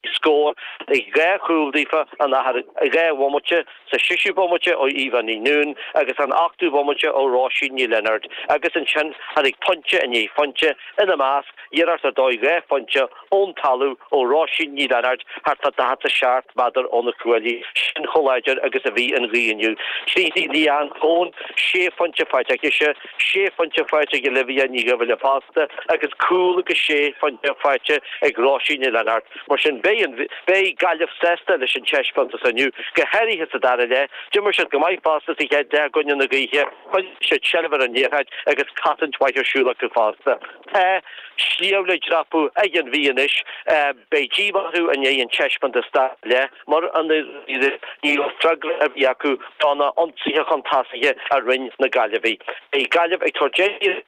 Scóráil dhá chúl daofa, laistigh de dhá bhomaite sa séú bomaite ó Eva Ní Nuadhain agus an ochtú bomaite ó Róisín Ní Lionáird agus ansin tháinig pointe i ndiaidh pointe, ina measc, iarracht ar dóigh dhá phointe ón talamh ó Róisín Ní Lionáird thart fá 47 méadar óna cuaillí, sin chomh láidir agus a bhí an ghaoth inniu. Tríd Leanne Coen, sé phointe faighte aici, Sé phointe faighte ag Olivia Ní Dhuibhghiolla fosta agus cúl agus sé phointe faighte ag Róisín Ní Lionáird. Mar sin, beidh Gaillimh sásta leis an taispeántas inniu, go háirithe sa dara leath. D'imir siad go maith fosta sa chéad leath i gcoinne na gaoithe, choinnigh siad seilbh ar an liathróid agus cosaint mhaith ar siúl acu fosta. Tá sliabh le dreapadh ag an Mhí anois, beidh díomá orthu i ndiaidh an taispeántas dara leath. Mar a ndeir Ní raibh freagra ar bith acu do na hionsaithe chun tosaithe a rinne na Gaillimhigh. Beidh Gaillimh ag tabhairt aghaidh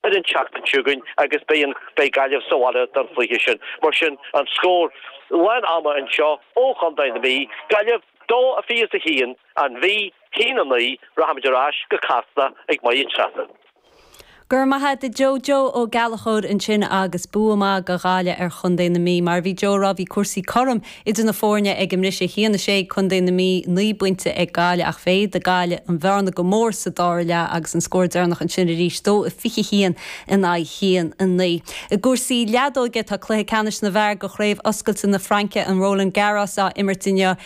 ar an tseachtain seo chugainn agus beidh Gaillimh sa bhaile don chluiche sin. Mar sin an scór lán ama anseo ó Chontae na Mí, Gaillimh 2 a fiche is a haon, An Mhí, a haon a 9, Rachaimid ar ais go Casla ag Máire Treasa. Go raibh maith a't a Joe Joe Ó Gallachóir ansin agus bua maith do Ghaillimh ar Chontae na Mí. Mar a bhí Joe a' rá bhí cúrsaí cothrom idir na foirne ag an mbriseadh. a haon a sé Contae na Mí, naoi bpointe ag Gaillimh ach mhéadaigh Gaillimh an bhearna go mór sa dara leath agus an scór deireanach ansin arís, dó a fiche haon in aghaidh a haon a naoi. I gcúrsaí leadóige tá cluiche ceannais na bhfear de Chraobh Oscailte na Fraince, an Roland Garros, á imirt inniu.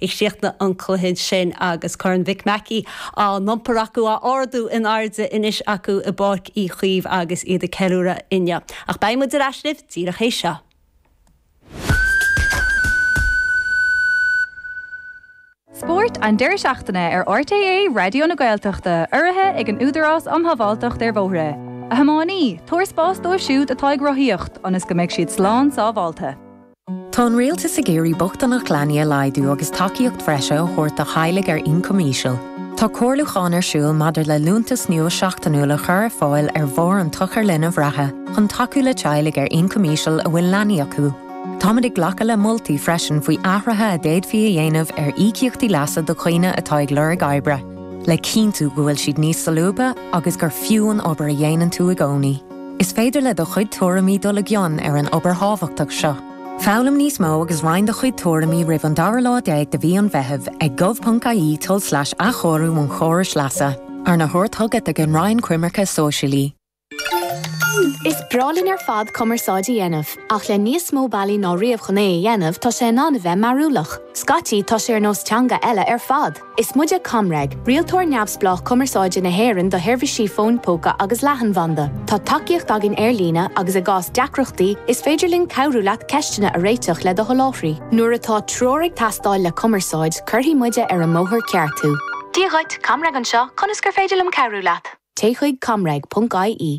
ag críochnú an chluiche sin agus Corn Mhic Mhacaigh á iompar acu, á ardú in airde anois acu i bPáirc Uí Chaoimh agus iad ag ceiliúradh inniu. Ach beidh muid ar ais libh díreach théis seo. Spórt an deireadh seachtaine ar RTÉ Raidió na Gaeltachta, urraithe ag an Údarás um Shábháilteacht ar Bhóithre. A thiománaí, tabhair spás dóibh siúd atá ag rothaíocht ionas go mbeidh siad slán sábháilte. Tá an rialtas ag iarraidh bochtaineacht leanaí a laghdú agus tacaíocht bhreise a thabhairt do theaghlaigh ar ioncam íseal. Tá comhairliúchán ar siúl maidir le liúntas nua seachtainiúil a chur ar fáil ar bharr an tsochair linbh reatha chun tacú le teaghlaigh ar ioncam íseal a bhfuil leanaí acu. Táimid ag glacadh le moltaí freisin faoi athruithe a d'fhéadfaí a dhéanamh ar íocaíochtaí leasa do dhaoine atá ag lorg oibre, le cinntiú go bhfuil siad níos solúbtha agus gur fiú an obair a dhéanann tú i gcónaí. Is féidir le do chuid tuairimí dul i gcion ar an obair thábhachtach seo. Foghlaim níos mó agus roinn do chuid tuairimí roimh an dara lá déag de mhí an Mheithimh ag gov.ie tulslais athchóiriú an chórais leasa, arna thabhairt chugat ag an Roinn Coimirce Sóisialaí. Is breá linn ar fad cumarsáid a dhéanamh, ach le níos mó bealaí ná riamh chun é a dhéanamh, tá sé in ann a bheith mearúlach. Scaití, tá sé ar nós teanga eile ar fad. Is muide ComReg, rialtóir neamhspleách cumarsáide na hÉireann do sheirbhísí fóin póca agus leathanbhanda. Tá tacaíocht againn ar líne agus i gcás deacrachtaí, is féidir linn cabhrú leat ceisteanna a réiteach le do sholáthraí. Nuair atá treoir ag teastáil le cumarsáid, cuirfidh muide ar an mbóthar ceart thú. Dia dhuit, ComReg anseo, conas gur féidir liom cabhrú leat? Téigh chuig comreg.ie.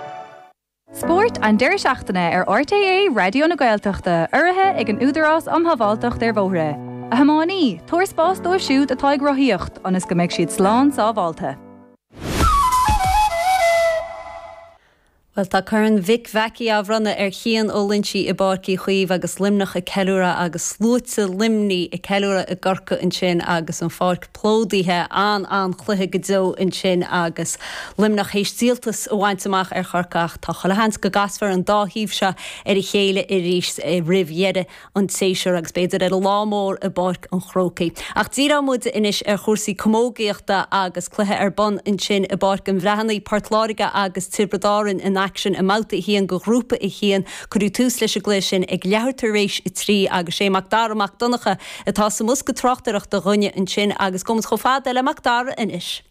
Spórt an deireadh seachtaine ar RTÉ Raidió na Gaeltachta, urraithe ag an Údarás Um Shábháilteacht ar Bhóithre. A thiománaí, tabhair spás dóibh siúd atá ag rothaíocht ionas go mbeidh siad slán sábháilte. Bhuel tá Corn Mhic Mheacaí á bhronnadh ar Chian Ó Loinsigh i bPáirc Uí Chaoimh agus Luimneach ag ceiliúradh agus sluaite Luimnigh ag ceiliúradh i gCorcaigh ansin agus an pháirc plódaithe, an-an-chluiche go deo ansin agus Luimneach théis díoltas a bhaint amach ar Chorcaigh ach tá chuile sheans go gcasfar an dá thaobh seo ar a chéile arís roimh dheireadh an tséasúir agus b'fhéidir ar an lá mór i bPáirc an Chrócaigh. Ach díreoidh muid anois ar chúrsaí camógaíochta agus cluiche ar bun ansin i bPáirc an Bhreathnaigh, Port Láirge agus Tiobraid Árainn in aicsean i mBabhta 1 de Ghrúpa 1. Cuireadh tús leis an gcluiche sin ag leathuair tar éis a trí agus sé Mac Dara Mac Donncha, atá sa mbosca tráchtaireachta dhúinne ansin agus gabhaimid chomh fada le Macdara anois.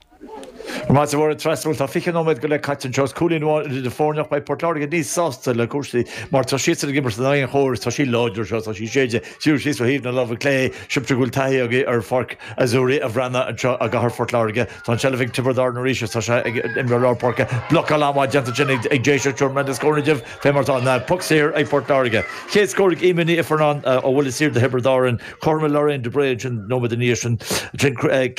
Maith agat a Mháire Treasa, bhuel, tá 20 nóiméad go leith caite anseo agus cúilín amháin idir na foirne ach beidh Port Láirge níos sásta le cúrsaí mar tá siadsan ag imirt in aghaidh an chóir agus tá sí láidir anseo, tá sí ag séideadh siar síos ó thaobh na láimhe clé. Sibhse go bhfuil taithí agaibh ar Pháirc Azzurri an Bhreathnaigh anseo i gcathair Phort Láirge. Tá an tseilbh ag Tiobraid Árann arís is tá sé ag imreoir lár páirce. Blocáil an-mhaith déanta ansin ag Déiseach. Tabharfaidh mé na scóranna daoibh fé mar tá an puc saor ag Port Láirge. Chéad scór ag Emer Ní Ifearnáin ó bhuille saor do Thiobraid Árann. Chothromaigh Lorraine de Brae ansin nóiméad ina dhiaidh sin.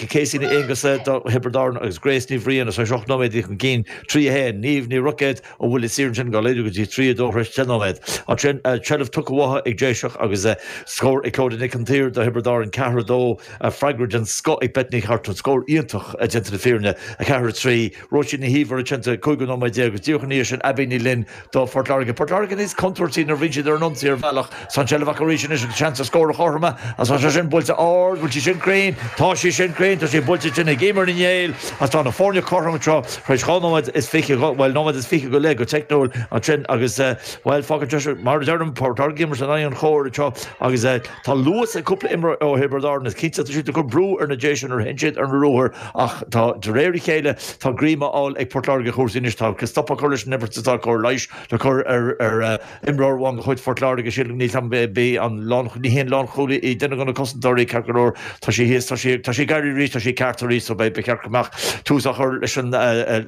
Casey Ní Aonghusa do Thiobraid Árann agus Grace Ní Bhriain théis ocht nóiméad chun cinn, 3, 1. Niamh Ní Roicéad. Ó bhuille saor ansin, dhá laghdú go dtí trí a dó threis deich nóiméad. Ansin, seilbh tugtha uathu ag Déiseach agus scór ag Clodagh Nic an tSaoir do Thiobraid Árann, ceathair a dó, freagra den scoth ag Beth Ní Chartúin, scór iontach déanta na fírinne, a ceathair a trí, Róisín Ní hÍomhair ansin cúigiú nóiméad déag agus díreach ina dhiaidh sin Abbie Ní Fhloinn do Phort Láirge. Port Láirge níos contúirtí nuair bhíonn siad ar an ionsaí ar bhealach, Is an tseilbh acu arís anois agus seans ar scór chothroma agus tá sé sin buailte ard, bhfuil sí sin cruinn, tá sí sin cruinn, tá sí buailte tinn ag Emer Ní Néill agus tá na foirne cothrom anseo tar éis dhá nóiméad is fiche, bhuel, nóiméad is fiche go leith go teicniúil ansin agus, bhuel, fág an deis, mar a deirim, Port Láirge ag imirt in aghaidh an chóir anseo agus tá luas ag cúpla imreoir ó Thiobraid Árann, is cinnte tá siad ag cur brú ar na Déise nuair a théann siad ar na ruathair ach tá, de réir a chéile, tá greim á fháil ag Port Láirge ar chúrsaí anois, tá stop á chur leis an imirt is tá cóir leighis le cur ar Imreoir amháin de chuid Phort Láirge sílim gurb í an lánchúlaí. Ní hí an lánchúlaí í, duine de na cosantóirí, ceart go leor. Tá sí thíos, tá sí, tá sí ag éirí arís, tá sí ceart arís so beidh, ba cheart go mbeadh tús á chur leis an,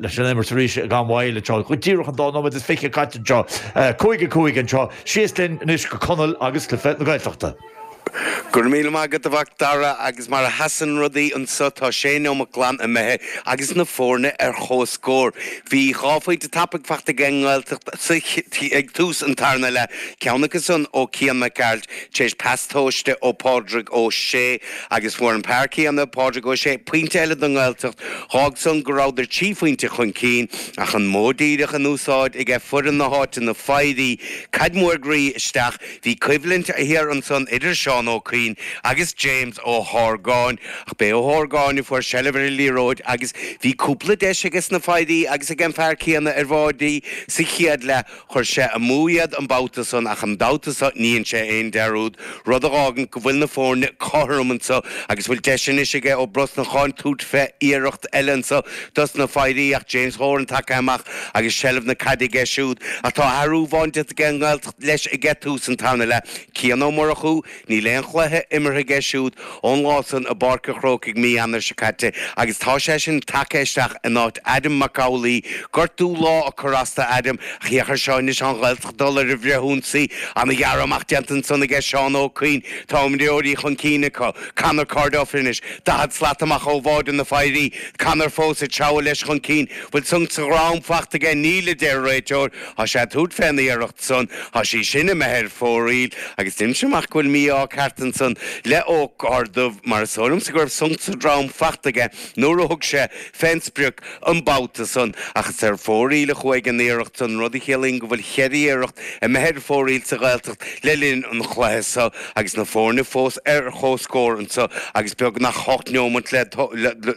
leis an imirt arís i gan mhoill anseo. Go díreach an dá nóiméad is fiche caite anseo. Cúig a cúig anseo. Síos linn anois go Conall agus cluiche na Gaeltachta. Go raibh míle maith agat, a Mhacdara, agus mar a sheasann rudaí anseo, tá sé neomat glan imithe agus na foirne ar chomhscór. Bhí dhá phointe tapaidh faighte ag an nGaeltacht ag tús an tarna leath, ceann acu san ó Cian Mac Gearailt tar éis pas tomhaiste ó Phádraig Ó Sé, agus fuair an fear céanna, Pádraig Ó Sé, pointe eile don nGaeltacht. D'fhág san go rabhadar trí phointe chun cinn, ach an modh díreach in úsáid ag foireann na háite na Foidhrí caid mhór ghroí isteach, Bhí coimhlint thiar ansan idir Seán Ó Cuinn agus James Ó hArgáin, ach b'é Ó hArgáin a fuair seilbh ar an liathróid agus bhí cúpla deis aiges na Foidhrí agus ag an fear céanna ar bháidí sa chéad leath. Chuir sé amú iad an babhta san ach an babhta so ní dhein sé aon dearúd, rud a dh'fhágann go bhfuil na foirne cothrom anso agus bhfuil deis anois aige Ó Brosnacháin tabhairt fé iarracht eile anso dos na Foidhrí ach James Horan tagtha amach agus seilbh na caide aige siúd ach tá athrú amháin déanta aige i leis aige tús an tarna leath, Cian Ó Murchú, níl aon chluiche imeartha aige siúd ón lá san i bPáirc a' Chrócaigh mí Eanáir seo caite agus tá seisean tagtha isteach in áit Adam Mac Amhlaoibh, gortú lámha ag cur as do Adam ach féach ar seo anois an Ghaeltacht dul ar an bhfrithionsaí, ana ghearradh amach déanta ansan aige Seán Ó Cuinn, tá imreoirí chun cinn acu, Conor Corduff anois, daichead slat amach ó bháide na bhFoidhrí, Conor fós ag treabhadh leis chun cinn, bhfuil sonc sa drom faighte aige, níl, a deir an réiteoir, Thá sé tabhairt fé an iarracht san, thá sí sin imithe ar fóraoil, agus deirimse amach go bhfuil mí-ádh ceart ansan le Ó Corrduibh, mar is dóigh liomsa go raibh sonc sa drom faighte aige nuair a thug sé fén sprioc an babhta san, ach is ar fóraoil a chuaigh an iarracht san, rud a chiallaíonn go bhfuil cheithre iarracht imithe ar fóraoil sa Ghaeltacht le linn an chluiche so, agus na foirne fós ar chomhscór anso agus beagnach hocht neomant go leith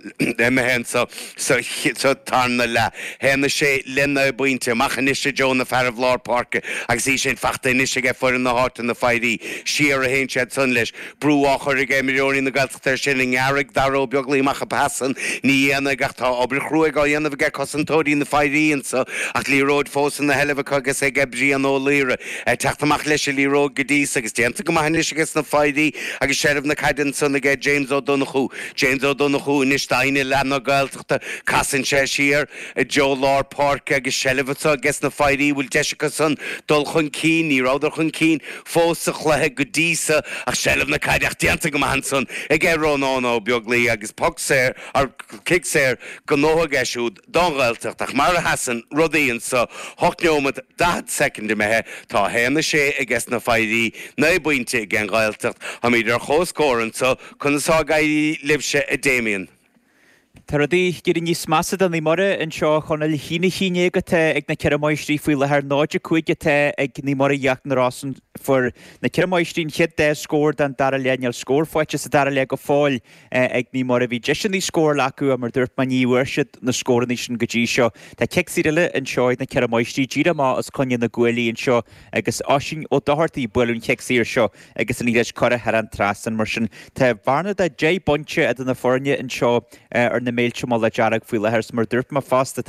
imithe anso. Sa tarna leath, théann sé lena bhainte amach anois i dtreo na fearaibh lár páirce agus í sin fachta anois aige foireann na háite, na Foidhrí siar a théann siad san leis. Brú á chur ag imreoirí na Gaeltachta air sin an ngearrfaidh Darragh Ó Beaglaoich amach an pas san, ní dhéanfaidh ach tá obair chruaidh á dhéanamh aige cosantóirí na bhFoidhrí anso ach liathróid fós ina seilbh acu agus ag Brian Ó Laoire ag teacht amach leis an liathróid go dtí so agus déanta go maith anois aiges na Foidhrí agus seilbh na caide ansan aige James Ó Donnchú. James Ó Donnchú, anois doimhin i leath na Gaeltachta, casann sé siar, i dtreo lár páirce agus seilbh fachta ages na Foidhrí an bhfuil deis acu san dul chun cinn, ní rabhadar chun cinn fós sa chluiche go dtí so ach seilbh na caide ach déanta go maith ansan aige Rónán Ó Beaglaoich agus poc saor or cic saor gnóite aige siúd don Ghaeltacht. Ach mar a sheasann rudaí anseo ocht neomat daichead soicind imithe, tá a haon is sé aiges na Faoitigh, naoi bpointe aige an Ghaeltacht. Táimid ar chomhscór anseo conas tá ag éirí libhse, a Damien? Tá rudaí ag éirí níos measa do Naomh Muire anseo a Chonaill. A haon a haon déag atá ag na Ceithre Máistrí faoi láthair, 0-5 atá ag Naomh Muire Íochtar na Rosann. Fuair na Ceithre Máistrí an chéad dá scór den dara leath, níl scór faighte sa dara leath go fóill, ag Naomh Muire. Bhí deiseanna scórála acu, mar a dúirt mé, ní bhfuair siad na scóranna sin go dtí seo. Tá cic saor eile anseo ag na Ceithre Máistrí, díreach amach os coinne na gcuaillí anseo agus Oisín Ó Dochartaigh ag bualadh an chic saor seo agus an liathróid curtha thar an trasnán mar sin. Tá bearna de 10 bpointe idir na foirne anseo ar na Méilte i Mullach Dearg faoi láthair. Mar a dúirt mé fosta, tá an.